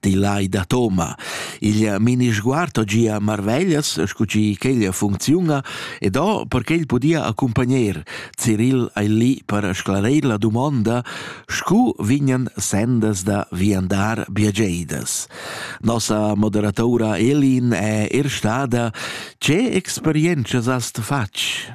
di lai da Toma. Il mini sguardo gia marveglias, scu chi quella funcziuna, ed o perché il podia accompagner Cyril ai lì per sclareir la dumonda, scu vignan sendas da viandar biageidas. Nossa moderatora Elin è er stada «Ce experienzas hast fatg?»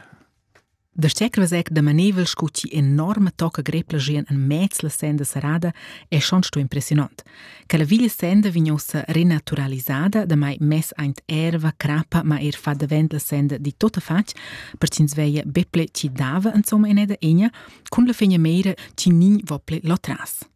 Da secrevesec da maneivel sco chi enorma tocca grepla gian in mez la senda serrada è schon sto impressionant. Che la villa senda vignosa renaturalisada, da mai mess aint erva, crappa, ma er fa davent la senda di tota fac, per cin sveia beple ci dava insomma in eda egna, cun la fegna meira ci nin vople lo tras.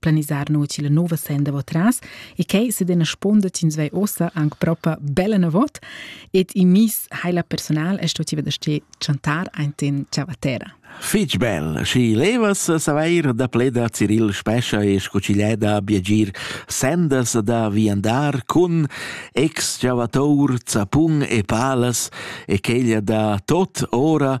planisar no la nova senda vo tras e che se dena sponda tins vai ossa anche propa bella navot et i mis hai la personal e sto ti veder ste chantar einten ciavatera Fich bel, și levas saveir da pleda Cyril Spescha e scucileda biagir sendas da viandar cun ex ciavatour, zapun e palas e quella da tot ora